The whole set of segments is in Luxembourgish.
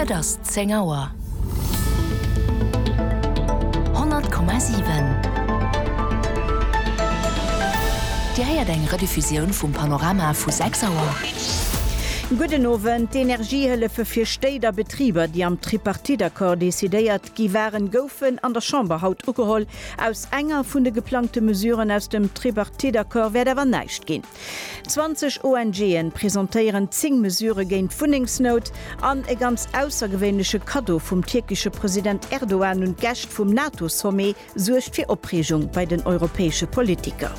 Et ass zéng Auer. 100,7. Dir héiert eng Rediffusioun vum Panorama vu 6 Auer. Gudden Owend. D'Energiehëllefe fir Stéit a Betriber, déi am Tripartite-Accord decidéiert gi waren, goufen an der Chamber haut ugeholl. Aus enger vun de geplangte Mesuren aus dem Tripartite-Accord wäert awer näischt ginn. 20 ONGen presentéieren 10 Mesure géint d'Wunnengsnout an e ganz aussergewéinleche Kaddo vum tierkesche President Erdogan un d'Gäscht vum NATO-Sommet suergt fir Opreegung bei den europäesche Politiker.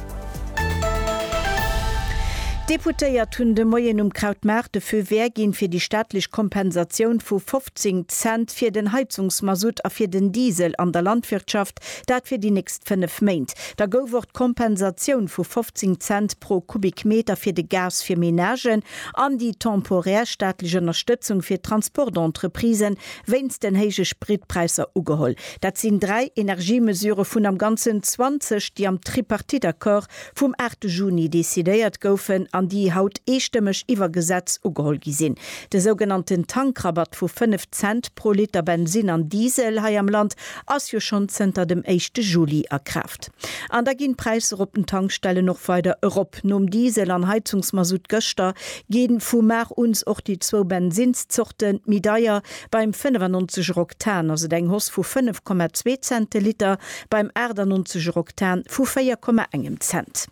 D'Deputéiert hunn de Moien um Krautmaart de Feu vert ginn, fir déi staatlech Kompensatioun vu 15 Cent fir den Heizungsmasutt a fir den Diesel an der Landwirtschaft Markt, dat fir déi nächst fënnef Méint. Da gouf och d'Kompensatioun vu 15 Cent pro Kubikmeter fir de Gas fir Menagen an déi temporär staatlech Ënnerstëtzung fir d'Transportentreprise wéinst den héije Spritpräisser ugeholl. Dat sinn dräi Energiemesure vun am Ganzen 20, déi am Tripartite-Accord vum 8 Juni decidéiert goufen an déi haut eestëmmeg iwwer Gesetz ugeholl gi sinn. De sougenannten Tankrabatt vu 5 Cent pro Liter Bensinn an Diesel hei am Land ass jo schonn zënter dem éischte Juli a Kraaft. An da ginn d'Präisser op den Tankstellen och weider erop. Nom Diesel an Heizungsmasutt gëschter ginn vu mar uns och déi zwou Bensinnszorten méi deier. Beim 95 er Oktan ass et eng Hoss vu 5,2 Zenteliter, beim 98 er Oktan vu 4,1 Cent.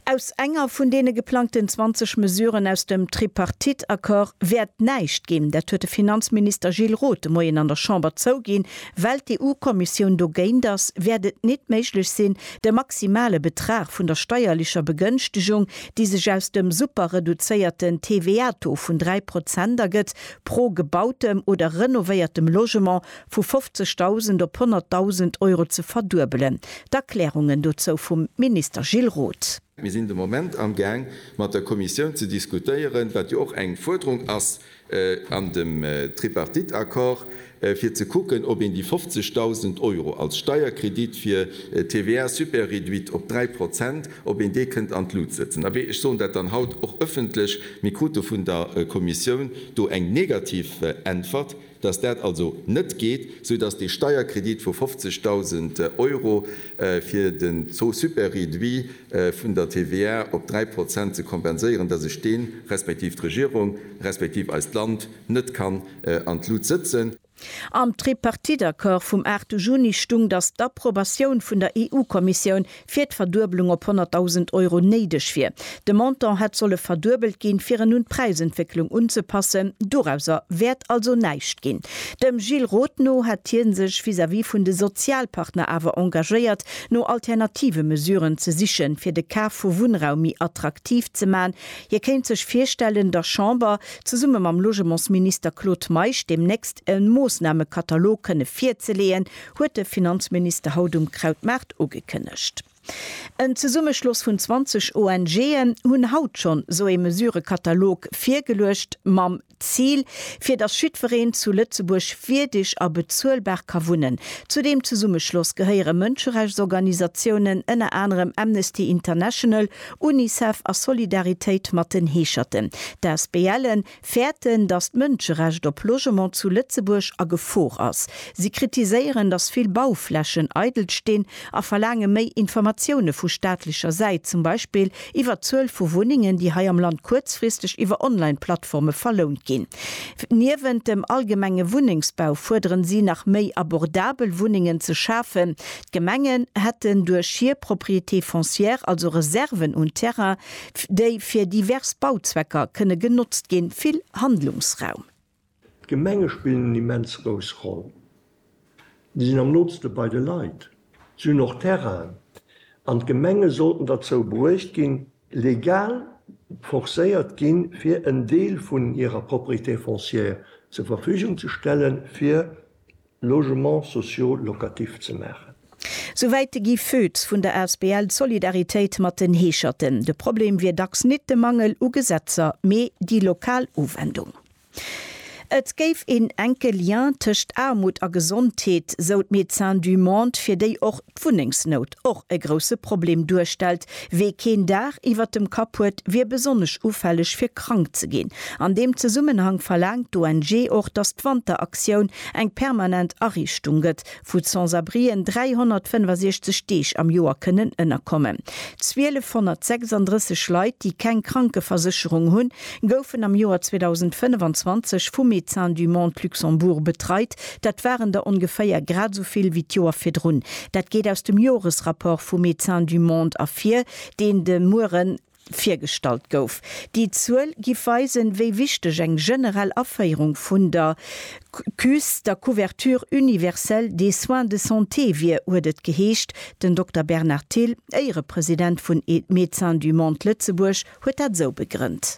Aus enger vun deene geplangten 20 Mesuren aus dem Tripartite-Accord wäert näischt ginn. Dat huet de Finanzminister Gilles Roth de Moien an der Chamber zouginn. Well d'EU-Kommissioun dogéint ass, wäert et nit méiglech sinn, de maximale Betrag vun der steierlecher Begënschtegung, déi sech aus dem super-reduzéierten TVA-Taux vun 3 Prozent ergëtt, pro gebautem oder renovéiertem Logement vu 50.000 op 100.000 Euro ze verduebelen. D'Erklärungen dozou vum Minister Gilles Roth. Mir sinn de Moment am Gaang mat der Kommissioun ze diskutéieren, wat jo och eng Fuerderung ass an dem Tripartite-Accord, fir ze kucken, ob een déi 50.000 Euro als Steierkredit fir TVA super-réduite op 3 Prozent, ob een dee kënnt an d'Lut sëtzen. Abee, ech soen dat dann haut och ëffentlech, mir krute vun der Kommissioun do eng negativ Äntwert, dass dat also net geet, soudass dee Steierkredit vu 50.000 Euro fir den Taux super-réduit vun der TVA op 3 Prozent ze kompenséieren, dass ech deen, respektiv d'Regierung, respektiv eist Land, net kann an d'Lut sëtzen. Am Tripartite-Accord vum 8 Juni stung, datt d'Approbatioun vun der EU-Kommissioun fir d'Verduebelung op 100.000 Euro néideg wier. De Montant hätt solle verduebelt ginn, fir en un d'Präisentwécklung unzepassen. Dorauser wäert also näischt ginn. Dem Gilles Roth no hätt hie sech vis-à-vis vun de Sozialpartner awer engagéiert, no alternative Mesuren ze sichen, fir de Kaf vu Wunnraum méi attraktiv ze man. Hie kéint sech virstellen, der Chamber zesumme mam Logementsminister Claude Meisch deemnächst e Moossnamekatalog kënne virzeleeën, huet de Finanzminister haut um Krautmaart ugekënnegt. En Zesummeschloss vun 20 ONGen hunn haut schonn esou ee Mesurëkatalog virgeluecht, mam Zil, fir datt jiddwereen zu Lëtzebuerg wierdeg a bezuelbar ka wunnen. Zu deem Zesummeschloss gehéiere Mënscherechtsorganisatiounen, ënner anerem Amnesty International Unicef a Solidaritéit mat den Heescherten, d'Asbl-e fäerten, datt d'Mënscherecht op Logement zu Lëtzebuerg a Gefor ass. Si kritiséieren, datt vill Bauflächen eidel stinn a verlaange méi Informatioune vu staatlecher Säit, zum Beispill iwwer d'Zuel vu Wunnengen, déi hei am Land kuerzfristeg iwwer Online-Plattforme verlount ginn. Niewent dem allgemenge Wunnengsbau fuerderen si nach méi abordabel Wunnengen ze schafen, D'Gemengen hätten duerch hir Propriétés foncières also Reserven un Terrain, déi fir divers Bauzwecker kënne genotzt ginn, vill Handlungsraum. D'Gemenge spillen en immens grouss Roll. Si sinn am nooste bei de Leit. Si hunn och Terrainen. An d'Gemenge sollten derzou bruecht ginn, legal forcéiert ginn, fir en Deel vun hirer Propriétés foncières zur Verfügung ze stellen, fir Logements sociaux locatifs ze maachen. Souwäit de Guy Foetz vun der asbl Solidariteit mat den Heescherten. De Problem wier dacks nit de Mangel u Gesetzer, mee déi lokal Uwendung. Et géif een enke Lien tëscht Aarmut a Gesondheet, sou d'Médecins du Monde, fir déi och d'Wunnengsnout och e grousse Problem duerstellt, Wee keen Daach iwwert dem Kapp huet, wier besonnesch ufälleg fir krank ze ginn. An deem Zesummenhang verlaangt d'ONG och, datt d'Wanteraktioun eng permanent Ariichtung gëtt, wou d'Sans-abrien 365 Deeg am Joer kënnen ënnerkommen. 1.236 Leit, déi keng Krankeversécherung hunn, goufen am Joer 2025 vum Médecins du Monde Luxembourg betreit, Dat waren der ongeféier grad esou vill wéi d'Joer virdrun. Dat geet aus dem Joresrapport vu Médecins du Monde ervir, deen de Muere virgestallt gouf. Déi Zuel giff weisen, wéi wichteg eng generell Aféierung vun der CUS, der Couverture universelle des soins de santé, wier, huet et geheescht. Den Dokter Bernard Thill, Éierepresident vun Médecins du Monde Lëtzebuerg, huet dat esou begrënnt.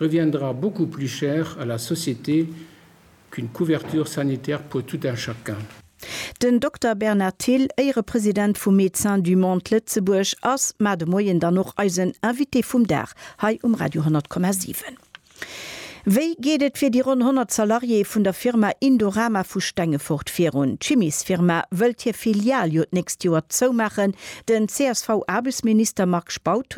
reviendra beaucoup plus cher à la société qu'une couverture sanitaire pour tout un chacun. Den Dokter Bernard Thill, Éierepresident vu Médecins du Monde Lëtzebuerg, ass mar de Moien dann och eisen Invité vum Dag hei um Radio 10,7. Wéi geet et fir déi ronn 100 Salariéë vun der Firma Indorama vu Stengefort virun? D'Chimiesfirma wëllt hir Filial jo d'nächst Joer zoumaachen. Den CSV-Aarbechtsminister Marc Spautz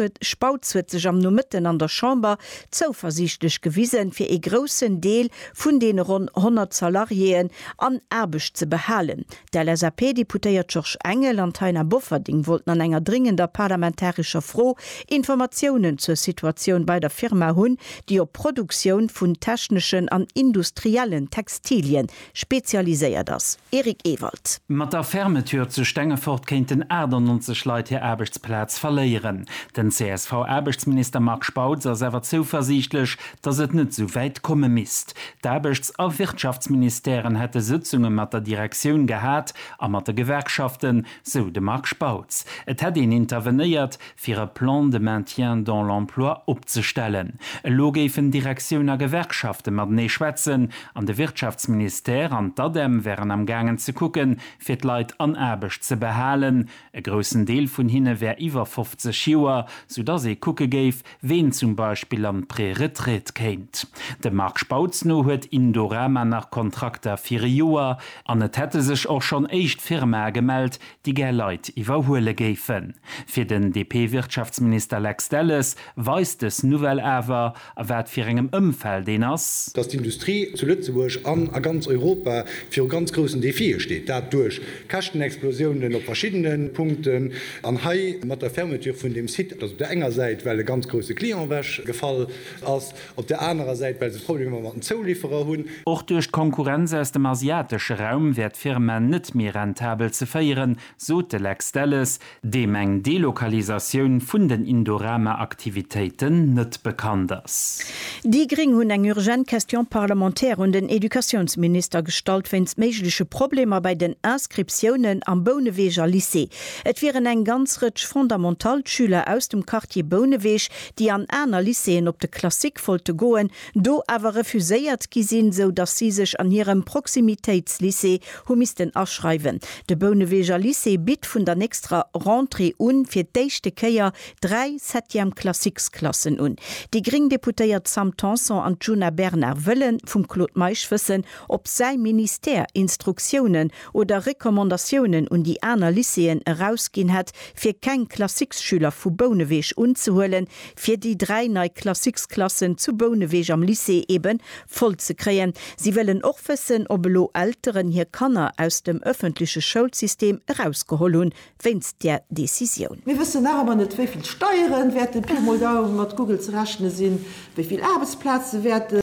huet sech am Nomëtten an der Chamber zouversiichtlech gewisen, fir ee groussen Deel vun deene ronn 100 Salariéeën an Aarbecht ze behalen. D'LSAP-Deputéiert Georges Engel an d'Taina Bofferding wollten an enger dringender parlamentarescher Fro Informatiounen zur Situatioun bei der Firma hunn, déi op d'Produktioun vun techneschen an industriellen Textilien spezialiséiert ass. Eric Ewald. Mat der Fermeture zu Stengefort kéinten 98 Leit hir Aarbechtsplaz verléieren. Den CSV-Aarbechtsminister Marc Spautz ass awer zouversiichtlech, datt et net esou wäit komme misst. D'Aarbechts a Wirtschaftsministèren hätte Sëtzunge mat der Direktioun gehat a mat de Gewerkschaften, sou de Marc Spautz. Et hätt een intervenéiert, fir e Plan de maintien dans l'emploi opzestellen. Elo géifen Direktioun a Gewerkschafte matenee schwätzen an de Wirtschaftsministère an d'ADEM wären am gaangen ze kucke fir d'Leit an Aarbecht ze behalen. E groussen Deel vun hinne wär iwwer 50 Joer, soudass ee kucke géif, ween zum Beispill an d'Préretraite kéint. Dem Marc Spautz no huet Indorama nach Kontrakter fir e Joer an et hätte sech och schonn éischt Firmae gemellt, déi gär Leit iwwerhuele géifen. Fir den DP-Wirtschaftsminister Lex Delles weist dës Nouvelle awer, a wat fir engem Ëmfeld een ass. Datt d'Industrie zu Lëtzebuerg an a ganz Europa viru ganz groussen Defie steet. Dat duerch Käschtenexplosiounen op verschiddene Punkten, an hei mat der Fermeture vun deem Site, datt op der enger Säit well e ganz grousse Client ewech gefall ass, Op der anerer Säit, well se Problemer mat den Zouliferer hunn. Och duerch d'Konkurrenz aus dem asiatesche Raum wär d'Firma net méi rentabel ze féieren, sot de Lex Delles, deem eng Delokalisatioun vun den Indorama-Aktivitéiten net bekannt ass. Déi gréng hunn eng urgent Question parlementaire un den Educatiounsminister gestallt wéinst méigleche Problemer bei den Inscriptiounen am Bouneweger Lycée. Et wieren eng ganz Rëtsch Fondamental-Schüler aus dem Quartier Bouneweg, déi an aner Lycéeën op de Classique wollte goen, do awer refuséiert gi sinn, sou datt si sech an hirem Proximitéitslycée hu missten aschreiwen. De Bouneweger Lycée bitt vun der nächsterer Rentrée un fir d'éischte Kéier dräi Septième Classiques Klassen un. Déi gréng Deputéiert Sam Tanson an d'Djuna Bernard wëlle vum Claude Meisch wëssen, ob säi Ministère Instruktiounen oder Recommandatiounen un déi aner Lycéeën erausginn hätt, fir keng Classiques-Schüler vu Bouneweg unzehuelen, fir déi dräi nei Classiques-Klassen zu Bouneweg am Lycée ebe voll ze kréien. Si wëllen och wëssen, ob elo Elteren hir Kanner aus dem ëffentleche Schoulsystem erausgeholl hunn wéinst där Decisioun. Mir wëssen nach ëmmer net, wéi vill Steieren wäerten, Pi mol Daum, mat Google ze rechne sinn, wéi vill Aarbechtsplaze wäerten,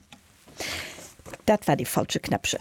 Dat war dee falsche Knäppchen.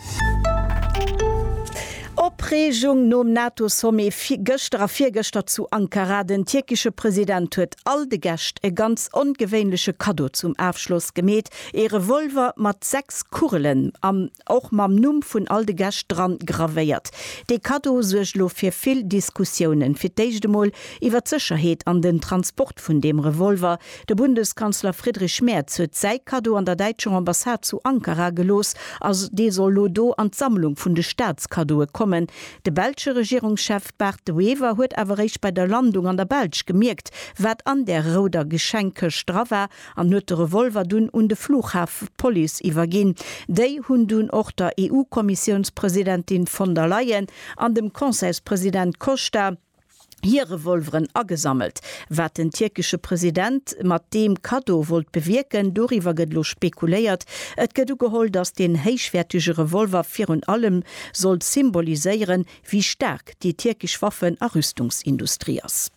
Opreegung nom NATO-Sommet gëschter a virgëschter zu Ankara. Den tierkesche President huet all de Gäscht e ganz ongewéinleche Kaddo zum Afschloss gemeet, ee Revolver mat sechs Kugelen an och mam Numm vun all de Gäscht dran gravéiert. Dee Kaddo suergt elo fir vill Diskussiounen, fir d'éischt emol iwwer d'Sécherheet an den Transport vun deem Revolver, De Bundeskanzler Friedrich Merz huet säi Kaddo an der däitscher Ambassade zu Ankara gelooss a dee soll lo do an d'Sammlung vun de Staatskaddoe kommen. De belsche Regierungschef Bart De Wever huet awer réischt bei der Landung an der Belsch gemierkt, wat an där rouder Geschenkkëscht dra war an huet de Revolver dunn un de Flughafepolice iwwerginn. Déi hunn dunn och der EU-Kommissiounspresidentin von der Leyen an dem Conseilspresident Costa, hir Revolveren agesammelt. Wat den tierkesche President mat deem Kaddo wollt bewierken, doriwwer gëtt elo spekuléiert. Et gëtt ugeholl, datt deen héichwäertege Revolver virun allem soll symboliséieren, wéi staark déi tierkesch Waffen a Rüstungsindustrie ass.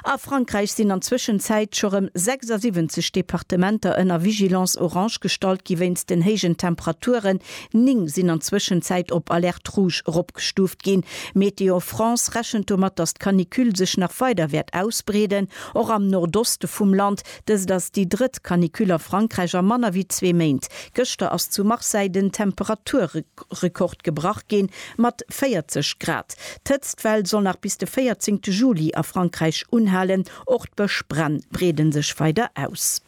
A Frankräich sinn an Zwëschenzäit scho rëm 76 Departementer ënner Vigilance orange gestallt gi wéinst den héijen Temperaturen, Ning sinn an Zwëschenzäit op Alerte Rouge eropgestuuft ginn. Météo France rechent domat, datt d'Canicule sech nach weider wäert ausbreeden, och am Nordoste vum Land. Dëst ass déi drëtt Canicule a Frankräich a manner wéi zwee Méint. Gëschter ass zu Marseille den Temperaturrekord gebrach ginn, mat 40 Grad. D'Hëtztwell soll nach bis de 14 Juli a Frankräich unhalen. Och d'Bëschbränn breede sech weider aus.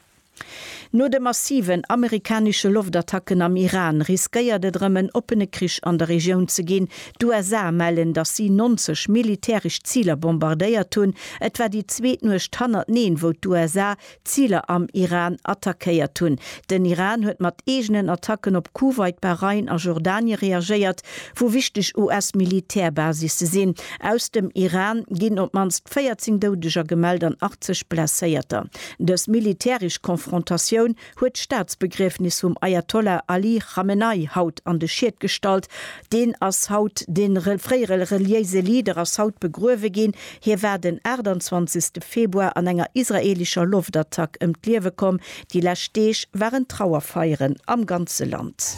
No de massiven amerikanesche Loftattacken am Iran riskéiert et erëm en oppene Krich an der Regioun ze ginn. D'USA mellen, datt si 90 militäresch Ziler bombardéiert hunn. Et war déi zweet Nuecht hannerteneen, wou d'USA Ziler am Iran attackéiert hunn. Den Iran huet mat eegenen Attacken op Kuwait, Bahrain a Jordanie reagéiert, wou wichteg US-Militär-Basisse sinn. Aus dem Iran ginn op d'mannst 14 Doudeger gemellt an 80 Blesséierter. Dës militäresch Konfrontatioun huet d'Staatsbegriefnis vum Ajatollah Ali Chamenei haut an de Schied gestallt. Deen ass haut, de fréiere reliéise Leader ass haut begruewe ginn. Hie war den 28 Februar an enger israeelescher Loftattack ëm d'Liewe komm. Déi lescht Deeg waren Trauerfeieren am ganze Land.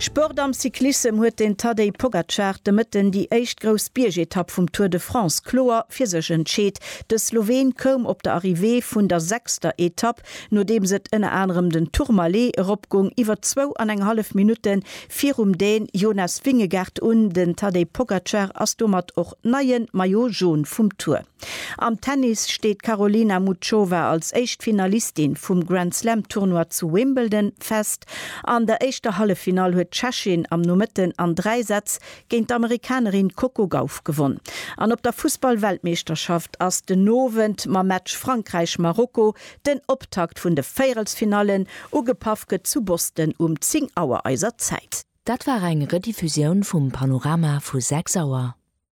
Sport Am Cyclissem huet den Tadej Pogacar de Mëtten déi éischt grouss Biergetapp vum Tour de France kloer fir sech entscheet. De Sloween koum op der Arrivée vun der sechster Etapp, nodeems et ënner anerem den Tourmalet eropgung, iwwer zwou an eng hallef Minutte virum Dän Jonas Vingegaard un. Den Tadej Pogacar ass domat och neie Maillot Jaune vum Tour. Am Tennis steet d'Karolina Muchova als éischt Finalistin vum Grand Slam Tournoi zu Wimbledon fest. An der éischter Halleffinall huet d'Tschechin am Nomëtten an dräi Sätz Géint d'Amerikanerin Coco Gauff gewonn. An op der Fussball-Weltmeeschterschaft ass den Owend mam Match Frankräich-Marokko den Optakt vun de Véierelsfinallen. Ugepaff gëtt zu Boston um 10 Auer eiser Zäit. Dat war eng Rediffusioun vum Panorama vu 6 Auer.